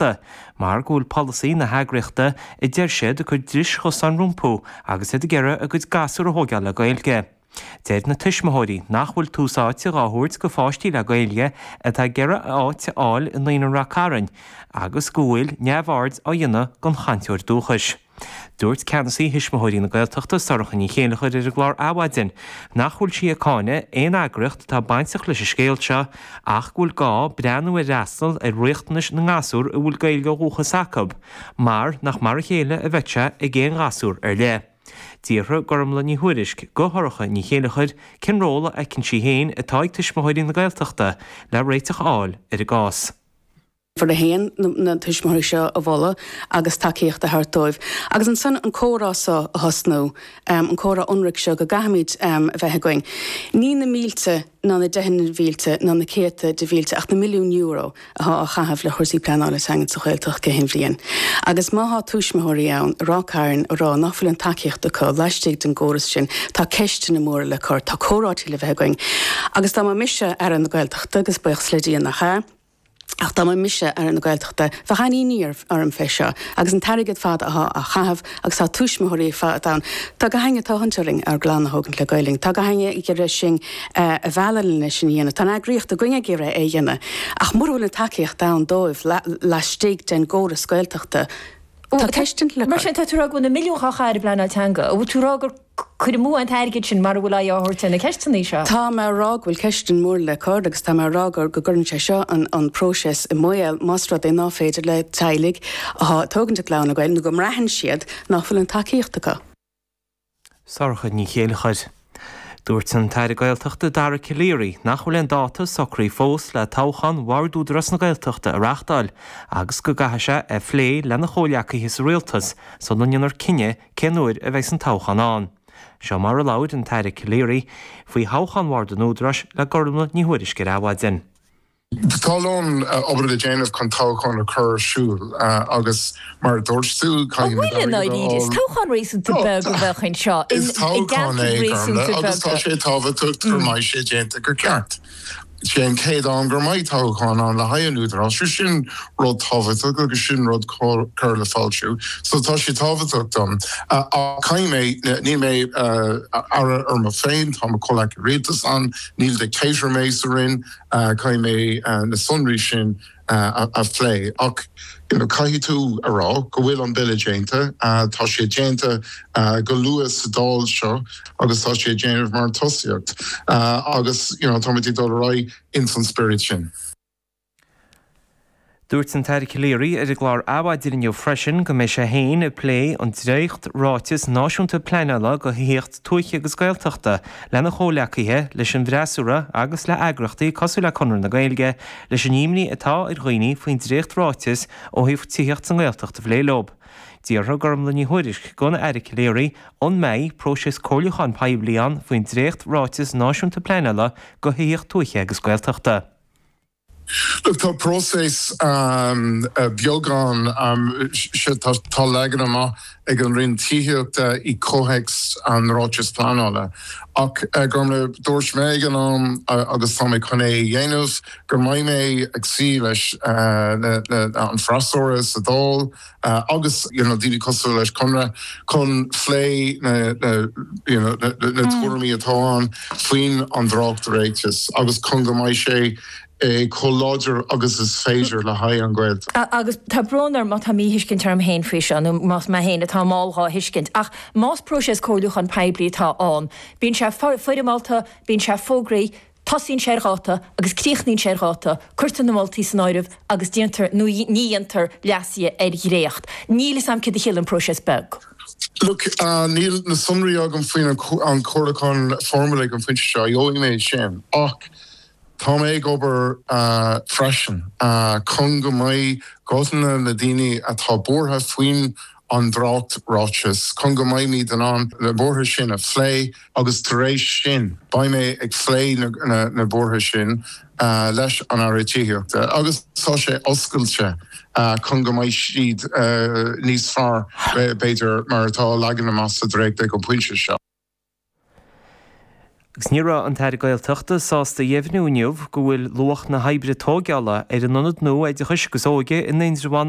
Gaeltachta mar go bhfuil polasaí na heagraíochta a deir siad ag cur dris chosáin rompu agus iad ag iarraidh a gcuid gasúr a thóigeáil le Gaeilge. Deir na tuismitheoirí nach bhfuil tús áite dhá thabhairt do pháistí le Gaeilge atá ag iarraidh áit a fháil i Naíonra Ráth Cairn agus go bhfuil neamhaird á dhéanamh den chainteoir dúchais. Dúirt Ceannasaí Thuismitheoirí na Gaeltachta, Sorcha Ní Chéilleachair ar an gclár Adhmhaidin nach bhfuil sí ag cáineadh aon eagraíocht atá bainteach leis an scéal seo ach go bhfuil gá breathnú ar fhreastal ar riachtanais na ngasúr a bhfuil Gaeilge ó dhúchas acu mar nach mar a chéile a bheadh sé ag aon ghasúr ar leith. D'fhiafraigh Gormlaith Ní Thuairisg de Shorcha Ní Chéilleachair cén ról a fheiceann sí féin atá ag Tuismitheoirí na Gaeltachta le réiteach a fháil ar an gcás. uimhir a haon na tuismitheoirí seo a mholadh agus tacaíocht a thabhairt dóibh agus ansin an comhrá seo a thosnú, an comhrá ionraic seo go gcaithfimid a bheith againn. Ní na mílte ná na deicheanna mílte ná na céadta de mhílte ach na milliúin euro athá á chaitheamh ar chúrsaí pleanála teangan sa Ghaeltacht gach aon bhliain agus má thá tuismitheoirí ann i Ráth Cairn ag rá ná fuil an tacaíocht acu laistigh den gcóras sin tá ceisteanna móra le cur, tá comhráití le bheith againn agus dá mba mise Aire na Gaeltachta, agus buíochas le Dia nach ea, Ach dá mba mise Aire na Gaeltachta, bheadh an-imní orm fé seo agus an t-airgead ar fad athá á chaitheamh agus tá tuismitheoirí fadhb ann. Tá gach einne ag tathant orainn ár gclann a thógaint le Gaelainn. Tá gach einne ag iarraidh sinn a mhealladh le sin a dhéanamh. Tá an eagraíocht againn ag iarraidh é a dhéanamh. Ach mura bhfuil an tacaíocht ann dóibh laistigh den gcóras Gaeltachta, tá ceist ann. Mar sin tá tú ag rá go bhfuil na milliúin dhá gcaitheamh ar an bpleanáil teanga, an bhfuil tú ag rá gur. Cur amú an t-airgead sin, mara bhfuil aghaidh á thabhairt ar na ceisteanna seo. Tá mé ag rá go bhfuil ceisteanna móra le cur agus tá mé ag rá go gcuireann sé seo an próiseas i mbaol más rud é ná féidir le teaghlaigh atá ag tógaint a gclann le Gaeilge nó go mbraitheann siad nach bhfuil an tacaíocht acu. Sorcha Ní Chéilleachair. Dúirt an tAire Gaeltachta Dara Calleary nach bhfuil aon dáta socraithe fós le toghchán Bhord Údarás na Gaeltachta a reáchtáil agus go gcaithfidh sé a phlé lena chomhghleacaithe sa Rialtas sula ndéanfar cinneadh Cén uair a bheas an toghchán ann? Seo mar a labhair an tAire Calleary faoi thoghchán Bhord an Údaráis le Gormlaith Ní Thuairisg ar Adhmhaidin. Tá a lán obair le déanamh chun toghchán a chur ar siúl agus mar a dúirt tú, caithfimid airgead a fháil. An bhfuil, i ndáiríre? Is toghchán réasúnta beag a bheadh anseo, in, i gceantar réasúnta beag. Is toghchán é, Gormlaith, agus tá sé tábhachtach go mbeidh sé déanta go ceart. Sé an chéad am go mbeidh toghchán ann le haghaidh an Údarás, so sin rud tábhachtach agus sin rud cóir le foilsiú. So tá sé tábhachtach dom. Ach caithfidh mé, níl mé Aire orm féin, tá mo chomhghleacaithe Rialtais ann, níl dictator mé sa Roinn, caithfidh mé na sonraí sin, a phlé ach caithfidh tú a rá go bhfuil an bille déanta, tá sé déanta go luath sa Dáil seo agus tá sé ag déanamh mar tosaíocht agus táimid ag dul ar aghaidh ins an spiorad sin. Dúirt an tAire Calleary ar an gclár Adhmhaidin inniu freisin go mbeidh sé féin ag plé an dréacht ráiteas náisiúnta pleanála do thithíocht tuaithe agus Gaeltachta lena chomhleacaithe, leis an bhfreasúra agus le eagraíochtaí cosúil le Conradh na Gaeilge leis an imní atá ar dhaoine faoin dréacht ráiteas ó thaobh tithíocht sa nGaeltacht a phlé leo. D'fhiafraigh Gormfhlaith Ní Thuairisg den Aire Calleary an mbeidh próiseas comhairliúcháin poiblí ann faoin dréacht ráiteas náisiúnta pleanála do thithíocht tuaithe agus Gaeltachta. Look, tá próiseas beagán, tá leagan amach ag an Roinn Tithíochta i gcomhthéacs an ráitis pleanála. Ach mar a dúirt mé ag an am, agus tá mé chun é a dhéanamh, go mbeidh mé ag suí leis an bhfreasúra sa Dáil agus daoine cosúil leis Conradh chun phlé na tuairimí atá ann faoin an dréacht ráiteas agus chun go mbeidh sé chomh láidir agus is féidir le haghaidh an Ghaeltacht. Agus tá brón orm má tá míthuiscint orm féin faoi seo, nó más mé féin atá mall dhá thuiscint, ach más próiseas comhairliúcháin poiblí atá ann, bíonn sé foirmeálta, bíonn sé fógraithe, tosaíonn sé ar dháta agus críochnaíonn sé ar dháta, cuirtear na moltaí san áireamh agus déantar nó ní dhéantar leasuithe ar dhréacht. Níl 'fhios a'm céard a chiallaíonn próiseas beag. Look, níl na sonraí agam faoin an comhairliúchán foirmiúil ag an phointe seo, gheobhaidh mé sin, ach Tá mé ag obair freisin chun go mbeidh guthanna na daoine atá buartha faoin an dréacht-ráiteas, chun go mbeimid in ann na buartha sin a phlé agus tar éis sin beidh mé ag phlé na buartha sin leis an Aire Tithíochta agus tá sé oscailte chun go mbeidh siad níos fearr b'fhéidir mar atá leagtha amach sa dréacht ag an bpointe seo. Agus ní raibh an tAire Gaeltachta sásta a dheimhniú inniu go bhfuil luach na hoibre tógála ar an ionad nua oideachais agus óige in Indreabhán